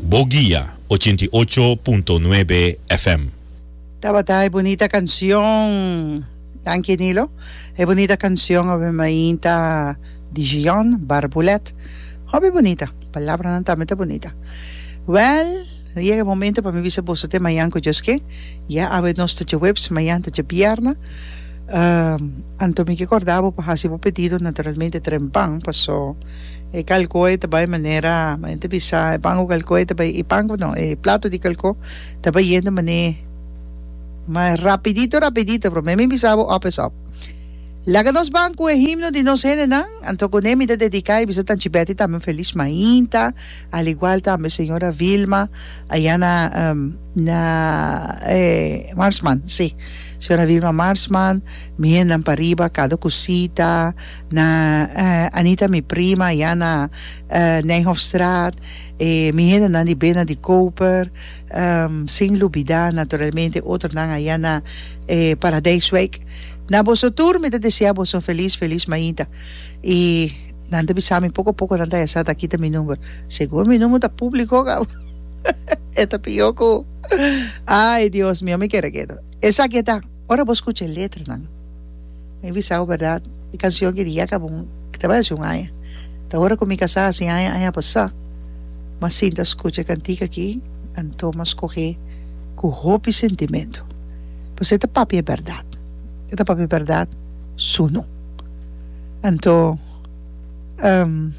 Bo guia ochenta i ocho punto nuebe FM. Tabata e bunita cancion. Danki Nilo. E bunita cancion hopi mainta di Gion Barbulet. Hopi bunita. Palabranan tambe ta bunita. Well, a yega e momento pa mi bisa boso te mayan cu Dios ke. Ya awe nos ta djaweps, mayan ta djabierna. Anto mi ke corda bo pa haci bo pedido, naturalmente trempan, paso. E kalko e ta bai manera men ta bisa e pan ku kalko e ta bai e pan no e plato di kalko ta bai yendo mané mas rapidito rapidito promé mi bisa bo òp es òp laga nos ban ku e himno di nos hendenan anto kuné mi ta dediká i bisa tanchi Betty tambe un feliz mainta al igual tambe señora Vilma ayá na na e Marsman si señora Vilma Marsman mi hendenan pariba Cado Cosita. Na Anita mi prima ya na Nijhoffstraat e mi hendenan di bena di Koper sin lubida naturalmente otronan a ya na Paradijswijk na boso tur mi ta desea boso feliz feliz mainta y nan ta bisa mi poco poco nan ta hesa ta kita mi number segun mi number ta publico kaba e ta pior ku ay Dios mio mi kere keto esaki e ta. Ora bo scucha e letranan, mi bisa bo berdad, e cancion ki di Yeka Boom ta bai haci un aña. Ta ora cu mi casá haci aña, aña pasá. Mas sinta a scucha e cantica aki, anto m'a scoge cu hopi sentimento. Pasobra e ta papia e berdad. E ta papia e berdad suno. Anto, ehm,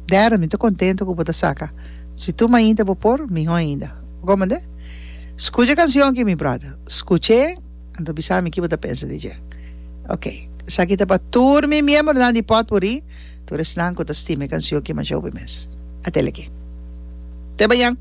Darren, mi ta contento cu bo ta saca. Si tur mainta bo por, miho ainda. Bo comprende? Scucha e cancion aki mi brother. Scuch'e, an ta bisa mi kibo ta pensa di dje. Ok. Esaki ta pa tur mi miembronan di potpurrí, tur esnan cu ta stima e cancion aki masha hopi mes. A tele aki. Te bañan!